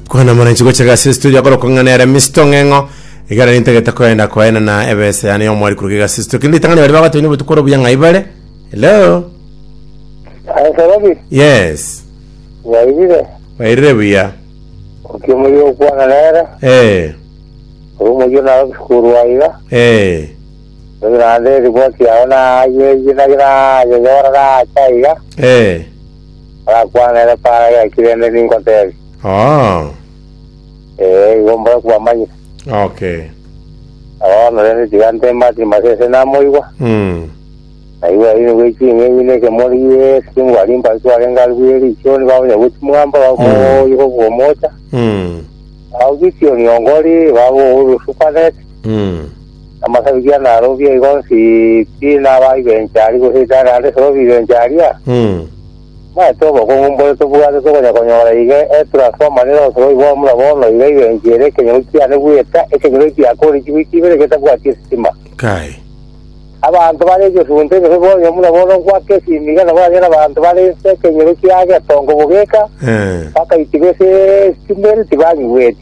kwana mwana nchigo chega ase studio akorokwa ng'a nere Mr. Ng'eng'o igara nintagete koenda koena na ebese yane yomwari kuruka iga ase studio kindi itang'ani bari bagotoini obotuko oro buya ng'a ibare hello Asorobi, yes wairire, bairire buya okie muri okwana nere, eh ori omoyio nawe obisukuru aiga, eh ori naende riboti yao naye yinagera yeyora nacha aiga, eh Agakwana ere Para gaki rende ningoteebie. Ah, Ee, igo mbore kwamanyete. okay. Na bono rende tiga nteeme ase Timoteo ase namoigwa, Mm. na igwe aine gwe ching'enyi na ekemori Yesu, ngwari mbari twarenge aria bweri ichoni babonya gwe chimwamba bakomogoyia kobwomocha. Mm. Au Gideoni ongori baba ouru supaneti. Mm. Amasabibia narobie igo nsi pi nabaai b'enchari goseeta naende esorobi b'enchari aria, Mm. maete obokong'u mbore tobwate tokonya konyora iga etransforma nere osorobi bwa mura bono iga ibenki ere ekenyoro kiane bweka ekenyoro ekiake ore chiwiki ibere getabwati esitima. Kai. Abanto bare egesunte gose bonya mura bono gwaka esimi iga nabo anyare abanto bare nse ekenyoro kiage etongo bogeka Eh. bakaitiba ase esitima ere tibanyigweti.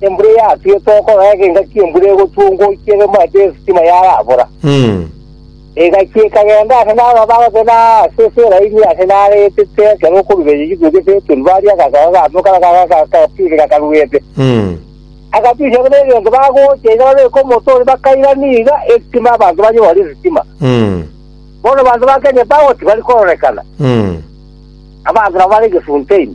Embura eyatuete okorora eke engaki embura egotuongwa oikie egemo ase esitima yarabora. Engaki ekagenda ase nababa bagote na ase esera enyia ase naretete ekero okoruberia chitukia ase Beteli baria agasaga gato kara gakapire gakaruete. Agatusia buna egento bagocha iga babeke omote oria bakairania iga esitima abanto banyore esitima. Bono abanto ba Kenya Power tibari kororekana. Abanto nabo bare egesunte ime.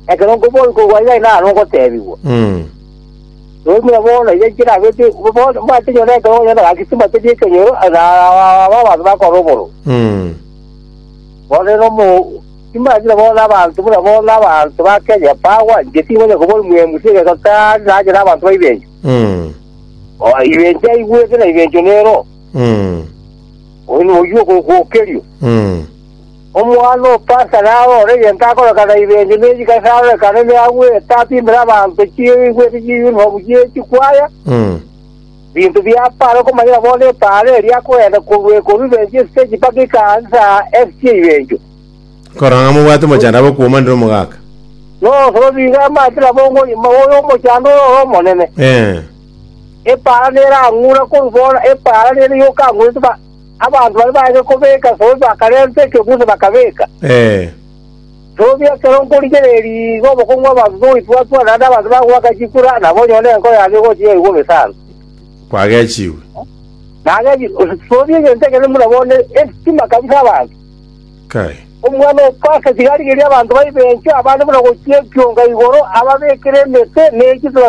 Ekero nkoboigwa gwaye aye naro ngotebigwa, Toimire bono iga inche nabe pi- bono omanyete onye nere ekero ogonyora nagisima tari ekenyoro, aye naro aba abanto bakore oboro. Bono rero omo timanyire bono abanto buna bono abanto ba Kenya bagwa, inche tinkonya koboria mwemusi egeto tari nanyore abanto ba Ibencho. Oh, Ibencho aigwete na Ibencho nero, oyio ogo- ogokokerio. Omwana o Pasa nabe ore egento akorekana Ibenge ne chikasi arorekane ne agwo eeta apimbere abanto chieigwete chi'eyunifomu chie chikwaya, binto biapo are okomanyera bono epaaro eria akogenda korwa ekonferensi y'esiteji mpaka ekansa esiche Ibencho. Korora ng'a mobwate mochando abe okwomanire omogaka. N'obosoro nigo amache nabo ngonyuma oyo omochando ororo omonene. Ee. Epaara nere ang'ura korwa bono epaara nere yoka ang'urete ba- Abanto baria baye kobeka Sobi bakarenta ekegusi bakabeka. Sobi, ekero nkorigereria igo obokong'u bw'abanto togoitwatwa, naende abanto bagoaka chikura, nabo onyore enko yane egocha igaiga omesanto. Kwagechigwe. Nagechigwe. Sobi egento ekenene buna bono esitima kabisa abanto. Kai. Omwana o Pasa tiga arigerie abanto baibe enchwa, abande buna gochia ekionga igoro, ababekere emete, ne chituga